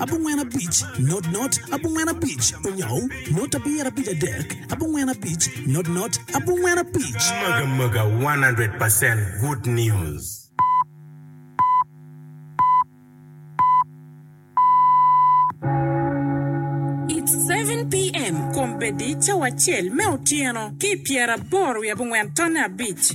abongwen abic, not not, abongwen abic, onyaw, not abiyera abic adek, abongwen abic, not not, abongwen abic. Mega mega 100 percent good news. It's seven PM, Kombeddi cawa acel me otyeno ki i pyeraboro wiye abongwen tonne abic.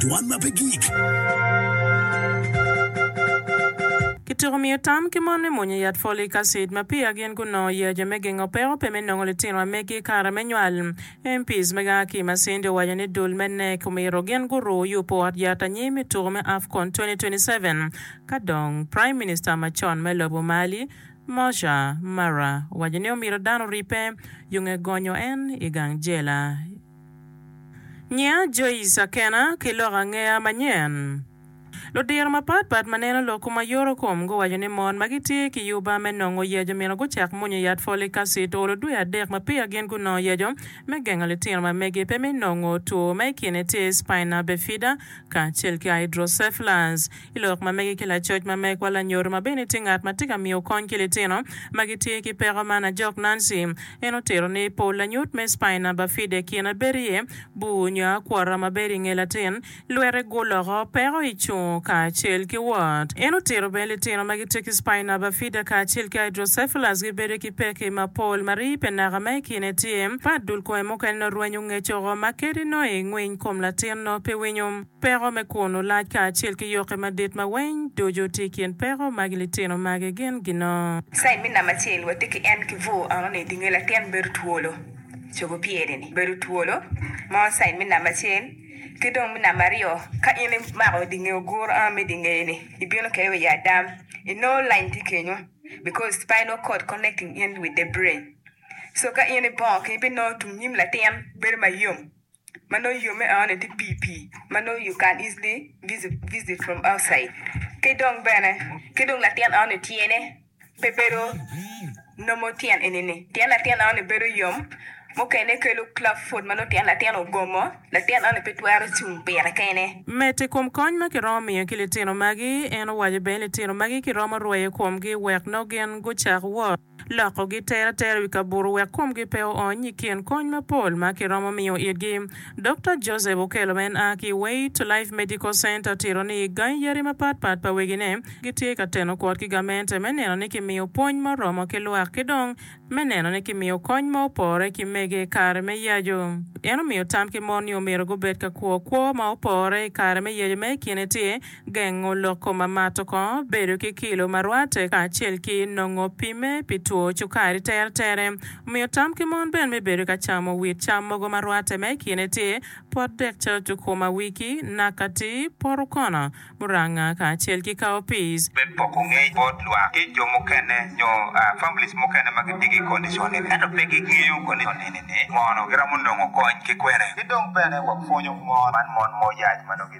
Dwan ma pe gik. Kityeko miyo tam ki mon me mwonyo yat folic acid ma peya gin gunongo yeya-jo me gengo peko pe me nongo litinwa megi i kare me nywal. MPs mege a ki i Masindi owaco ni dul me NEC omyero gin guru yubo ot yat anyim i tuku me Afcon 2027 ka dong Prime Minister macon me lobo Mali, Moussa Mara owaco ni omyero dano oripe, yunge gonyo en i gang jela. Nyinga Joyce Akena ki loko angeya manyen. Ludiro mapat pat ma neno lok ma yoro kom guwaco ni mon ma gitye ki yuba me nongo yeco myero gucak mwonyo yat folic acid olo dwe adek ma peya gin gunongo yeco me gengo litino ma megi pe me nongo two ma i kine tye spina bifida kacel ki hydrocephalus. I lok ma mege ki lacoc ma megwa lanyoro ma bene tye ngat ma tye ka miyo kony ki litino ma gitye ki peko man, ajok Nancy. En otito ni, Pol lanyut me spina bifida i kine bedo iye bur nyo akwota ma bedo i nge latin, lwete guloko, peko i cungo kacel ki wot. En otito bene litino ma gitye ki spina bifida kacel ki hydrocephalus gibedo ki pekki mapol ma rii pe naka ma i kine tye pat. Dul kome mukene nongo rwenyo ngecco oko ma kadi nongo i ngwiny kom latin nongo pe winyo. Peko me kun olac kacel ki yokke madit ma weng ducu tye i kin peko magi litino magi gin gino. Cain me namba acel watye ki en ki bur enoni i dinge latin bedo twolo cogo pyere ni bedo twolo mo cain me namba acel ki dong me namba aryo ka in imako dinge oguro eno me dinge ni ibino kede wa i adam i no lany tye kenyo because spinal cord connecting in with the brain so ka in ibongo keny ibino tung nyim latin bedo mayom. ma nongo yo me aone tye pii pii ma nongo you can easily visit from outside ki dong bene ki dong latin aone tyene pe bedo nomo tyen enini tyen latin aone bedo yom mukene kelo club foot ma nongo tyen latin ogomo latin aone pe twero cung pire kene. Medo i kom kony ma kiromo miyo ki litino magi, en owaco bene ni litino magi kiromo rweyo komgi wek nongo gin gucak wot. Lokogi tere atera i wi kaburu wek komgi pe oony i kin kony mapol ma kiromo miyo itgi. Dokta Joseph Okello ma en a ki Way to Life Medical Center tito ni gangi yadi mapat pat pa wegine gitye ka teno kwot ki gamente me neno ni kimiyo pwony ma oromo ki lwak ki dong me neno ni kimiyo kony ma opore ki mege i kare me yaco. En omiyo tam ki mon ni omyero gubed ka kwo kwo ma opore i kare me yaco ma i kine tye Gengo loko mamato kongo bedo ki kilo ma rwatte kacel ki nongo pimme pi two cukari teretere. Omiyo tam ki mon bene me bedo ka camo wit cam mogo ma rwatte ma i kine tye pot dek calo cukuma, wiki, nakati, pot okono, muranga kacel ki cowpeas. Bed poko ngec bot lwak ki jo mukene nyo families mukene ma gitye ki kondicon eni ento pe gingeyo kondicon eni ni ngono giramo nongo kony ki kwene. Ki dong bene wapwonyo mon man mon ma oyac ma nongo gitye.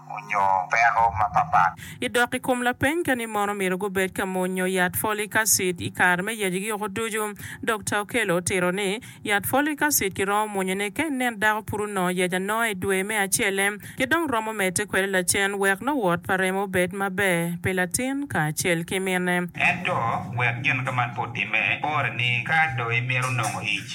onyo peko mapapat. I dok i kom lapeny ka ni mono myero gubed ka mwonyo yat folic acid i kare me yecgi oko ducu, Dokta Okello otito ni, Yat folic acid kiromo mwonyone ka inen dako pud onongo yec anonga i dwe me acelle ki dong romo medde kwede lacen wek nongo wot pa remo obed maber pi latin kacel ki minne. Ento wek gin ka man pe otimme, pore ni ka do imito nongo ic,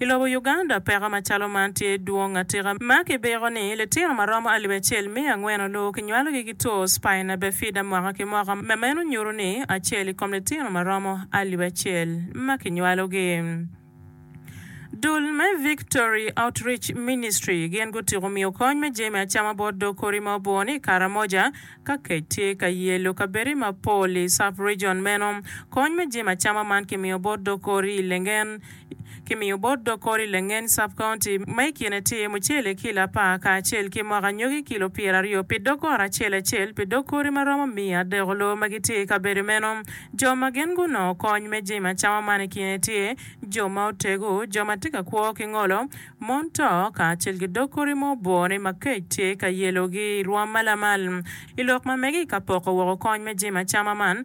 I lobo Uganda, peko macalo man tye dwong atika ma kibiko ni litino ma romo alip acel miya angwen oloo kinywalogi ki two spina bifida mwaka ki mwaka ma meno nyuto ni acel i kom litino ma romo alip acel ma kinywalogi. Dul me Victory Outreach Ministry gin gutiko miyo kony me jami acama bot dog kodi ma oboo ni i Karamoja ka kec tye ka yelo kabedi mapol i sub-region meno. Kony me jami acama man kimiyo bot dog kodi i Lengen, Kimiyo bot dog kori Lengen Sub-County ma i kine tye mucele kilo apar kacel ki moko anyogi kilo pyeraryo pi dog ot acel acel pi dog kori ma romo miya adeko loo ma gitye i kabedo meno. Jo ma gin gunongo kony me jami acama man i kine tye jo ma otego, jo ma tye ka kwo ki ngolo, mon to kacel ki dog kori ma obwone ma kec tye ka yelogi i rwom ma lamal. I lok ma mege i ka poko woko kony me jami acama man,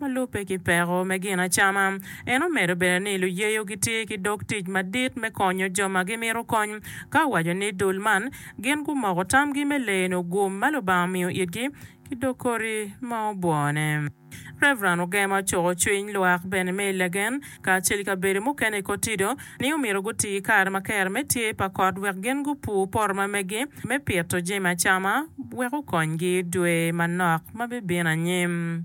ma lubbe ki peko me gin acama. En omedo bene ni luyeyo gitye ki dog tic madit me konyo jo ma gimito kony, ka owaco ni dul man gin gumoko tamgi me leno gum ma Lubanga omiyo itgi ki dog koti ma obwone. Rev. Ogema ocuko cwiny lwak bene me Legen kacel i kabedo mukene i Kotido ni omyero guti ki kare ma kero me tye pa kot wek gin gupur poto ma megi me pito jami acama wek okonygi dwe manok ma bibino anyim.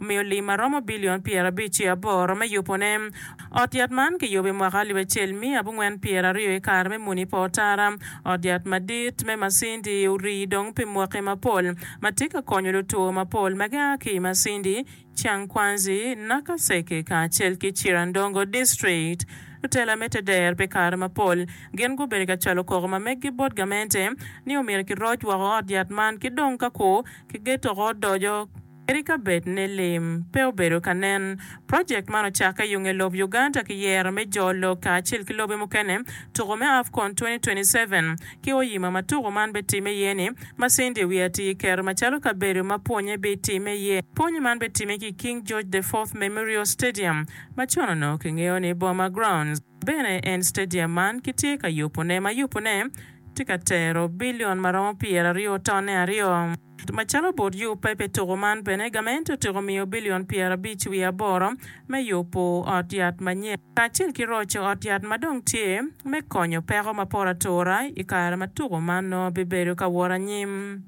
omiyo lim ma romo bilion pyerabic ki aboro me yubone. Ot yat man kiyubo i mwaka alip acel miya abongwen pyeraryo i kare me muni pa otara. Ot yat madit me Masindi orii dong pi mwaki mapol ma tye ka konyo lutwo mapol ma gia ki i Masindi, Changkwanzi, Nakaseke kacel ki Chirandongo district. Lutela me Teder pi kare mapol gin gubedo ka cwalo koko ma meggi bot gamente ni omyero kiroc woko ot yat man ki dong ka ku kigeto oko odoco. Kadi ka bed ni lim pe obedo ka nen, project man ocakke yung i lob Uganda ki yero me jo lok kacel ki lobe mukene tuko me Afcon 2027 ki oyima ma tuko man be time iye ni Masinde Wi Ati kiketo macalo kabedo ma pwonye bi time iye. Pwonye man be time ki King George the Fourth Memorial Stadium ma con onongo kingeyo ni Boma Grounds. Bene en stadium man kitye ka yubone ma yubone tye ka tero billion ma romo pyeraryo tone aryo. Macalo bot yubbe pi tuku man bene gament otyeko miyo billion pyerabic wiye aboro me yubu ot yat manyen kacel ki roco ot yat ma dong tye me konyo peko mapor atura i kare ma tuku man nongo bibedo ka wot anyim.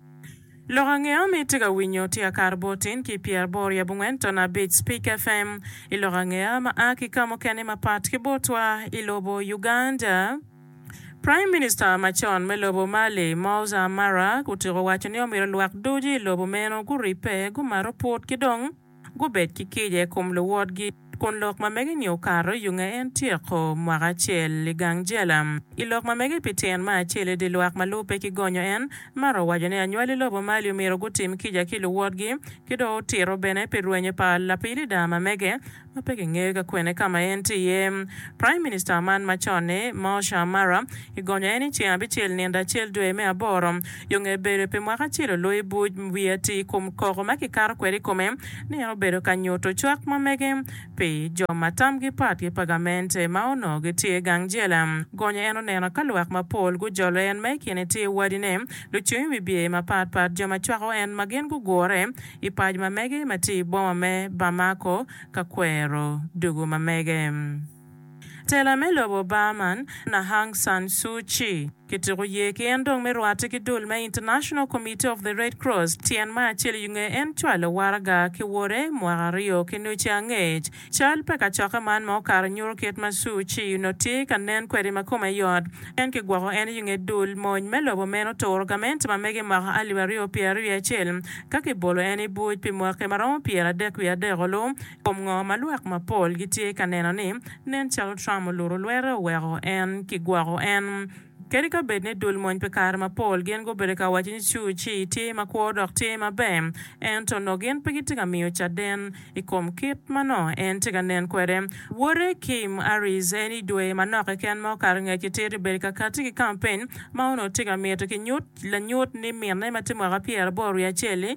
Lok angeyo mi itye ka winyo tye akato bot tin ki pyeraboro i abongwen tono abic Speak FM i lok angeya ma a ki ka mukene mapat ki botwa i lobo Uganda. Prime Minister macon me lobo Mali, Moussa Mara, otyeko waco ni omyero lwak ducu i lobo meno guribbe, gumato put ki dong, gubed ki kica i kom luwotgi, kun lok ma mege-ni okato i onge en tyeko mwaka acel i gang jela. I lok ma mege pi tyen ma acel i dye lwak ma lubbe ki gonyo en, Mara owaco ni anywali lobo mali omyero gutim kica ki luwotgi, ki dong otito bene pi rwenyo pa lapilida ma mege ma pe kingeyo ka kwene ka ma en tye iye. Praim Minista man macon-ni, Mosha Mara, i gonyo en i ceng abicel nino acel dwe me aboro, Yo nge bedo pi mwaka acel olo i buc, wiye atir i kom koko ma kikato kwede i kome ni en obedo ka nyuto cwak ma mege pi jo ma tamgi pat ki pa gamente ma onongo gitye i gang jela. Gonye en oneno ka lwak mapol gujolo en ma i kine tye wadine, lucung i wi bye mapat pat, jo ma cwako en ma gin gugure i pac ma mege ma tye i boma me Bamako ka kwero dugu ma mege. Tela me lobo Burman, na Aung San Suu Kyi, kituko ye ki en dong me rwatte ki dul me International Committee of the Red Cross, tyen ma acel i nge en cwalo waraga ki wode mwaka aryo ki nuci angec. Cal pa kacokke man ma okato nyuto kit ma Suu Kyi onongo tye ka nen kwede ma kome yot pien kigwoko en i nge dul mony me lobo meno turo gamente ma mege mwaka alip aryo pyeraryo wiye acel ka kibolo en i buc pi mwaki ma romo pyeradek wiye adek olu I kom ngo ma lwak mapol gitye ka neno ni nen calo Trump oluto lwete oweko en kigwoko en? Kadi ka bed ni dul mony pi kare mapol gin gubedo ka waco ni Suu Kyi tye makwo dok tye maber, ento onongo gin pe gitye ka miyo caden i kom kit ma nongo en tye ka nen kwede. Wote, Kim Aris, en i dwe manok keken ma okato ngec ki tito bedo ka katti ki kampen ma onongo tye ka mito ki nyut lanyut ni minne ma tye mwaka pyeraboro wiye acel-li,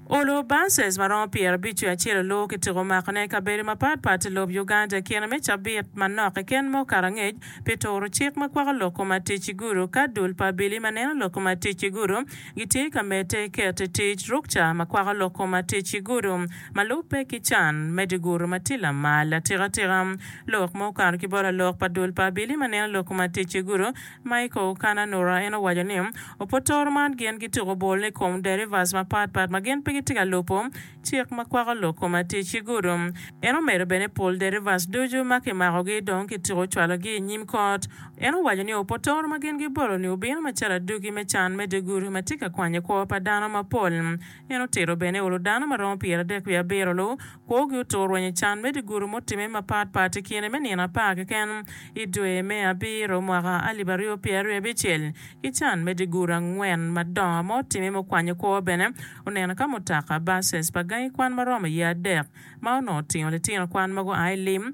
Olo bases maromo pyerabic wi acel oluwu ki tiko makone i kabedo mapat pat i lob Uganda i kine me cabit manok keken ma okato angec pi turo cik ma kwako lok kom atic i gudo ka dul pa abili ma neno lok kom atic i gudo gitye ka medde keto i tic rukca ma kwako lok kom atic i gudo ma lubbe ki can me di gudo ma tye lamal atika tika. Lok ma okato ki bot lalok pa dul pa abili ma neno lok kom atic i gudo Michael Kananura en owaco ni, Opotoro man gin gituko bol ni kom derivas mapat pat ma gin pe gitye ka lubo cik ma kwako lok kom atic i gudo. En omedo bene ni pol derivas ducu ma kimakogi dong kituko cwalogi i nyim kot. En owaco ni opotoro ma gin gibolo-ni obino macalo aduki me can me dye gudo ma tye ka kwanyo kwo pa dano mapol. En otito bene olo dano ma romo pyeradek wiye abiro-lu. Kwogi otur rweny i can me dye guru mutimme mapat pat i kine me nino apar keken i dwe me abiro mwaka alip aryo pyera ryo abicel, ki can me dye guru angwen madongo ma otimme me kwanyo kwo bene oneno ka mutoka, buses, pa gangi kwan ma romo iye adek ma onongo otingo litino kwan ma gua i lim.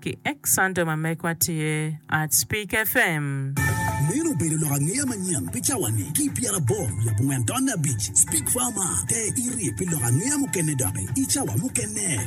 Ki X Santo ma megwa tye Artspeak FM. Meno obedo lok angeya manyen pi cawa-ni. Ki i pyeraboro wiye abongwen tonne abic, Speak Farmer, te iri pi lok angeya mukene doki i cawa mukene.